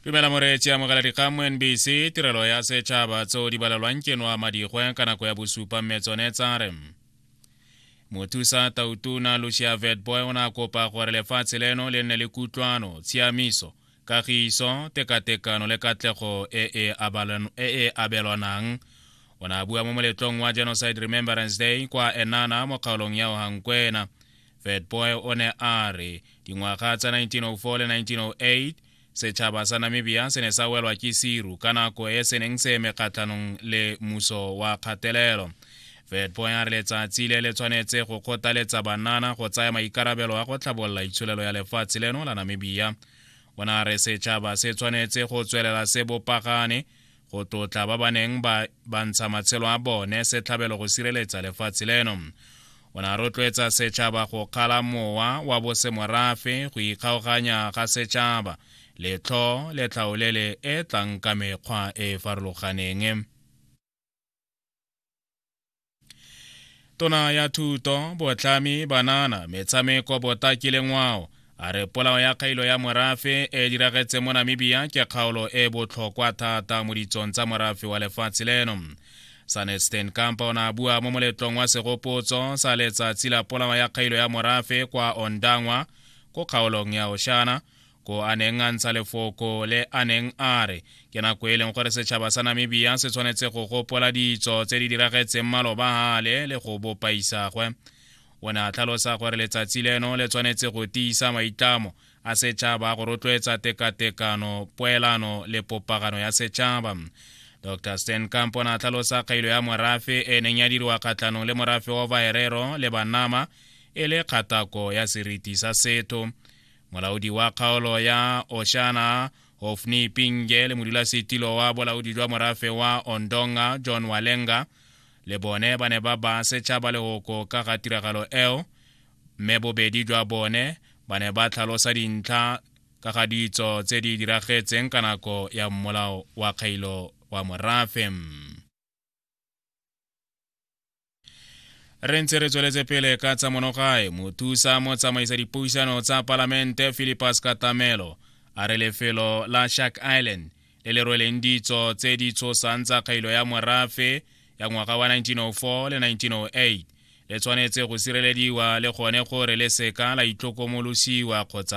dumela moreetsi amogela dikgang mo nbc tirelo ya setšhaba tseo di balelwang ke noa madigwe ka nako ya bosupa mme tsone tsa re mothusa tautuna lucia vetboy o ne a kopa gore lefatshe leno le nne le kutlwano tshiamiso kagiso tekatekano le katlego e e, e, e abelwanang o ne a bua mo moletlong wa genocide remembrance day kwa enana mo kgaolong ya ohankwena vetboy o ne a re dingwaga tsa 1904 le 1908 setšhaba sa namibia se ne sa welwa ke siru ka nako e se neng se eme kgatlhanong le muso wa kgatelelo vetboy a re letsatsi le le tshwanetse go kgothaletsa banana go tsaya maikarabelo a go tlhabolola itsholelo ya lefatshe leno la namibia o ne a re setšhaba se tshwanetse go tswelela se bopagane go tlotla ba ba neng ba ntsha matshelo a bone setlhabelo go sireletsa lefatshe leno o ne a rotloetsa setšhaba go kgala mowa wa bosemorafe go ikgaoganya ga setšhaba letlho le tlhaolele e tlang ka mekgwa e e farologaneng tona ya thuto botlhami banana metshameko botaki le ngwao a re polao ya kgailo ya morafe e diragetse mo namibia ke kgaolo e botlhokwa thata mo ditsong tsa morafe wa lefatshe leno sanesten kampa o ne a bua mo moletlong wa segopotso sa letsatsi la polao ya kgailo ya morafe kwa ondangwa ko kgaolong ya oshana ko a neng a ntsha lefoko le a neng a re ke nako e leng gore setšhaba sa namibia se tshwanetse go gopola ditso tse di diragetseng maloba gale le go bopa isagwe o ne a tlhalosa gore letsatsi leno le tshwanetse go tiisa maitlamo a setšhaba go rotloetsa tekatekano poelano le popagano ya setšhaba dr stan camp o ne a tlhalosa kgailo ya morafe e neng ya diriwa kgatlhanong le morafe wa vaerero le banama e le kgatako ya seriti sa setho molaodi wa kgaolo ya oshana hofni pinge le modulasetilo wa bolaodi jwa morafe wa ondonga john walenga le bone ba ne ba ba setšhaba legoko ka ga tiragalo eo mme bobedi jwa bone ba ne ba tlhalosa dintlha ka ga ditso tse di diragetseng ka nako ya mmolao wa kgailo wa morafe re ntse re tsweletse pele ka tsa monogae mothusa mo tsamaisa dipuisano tsa palamente philipus katamelo a re lefelo la shark island le le rweleng ditso tse di tshosang tsa kgailo ya morafe ya ngwaga wa 1904 le 1908 le tshwanetse go sirelediwa le gone gore le seka la itlokomolosiwa kgotsa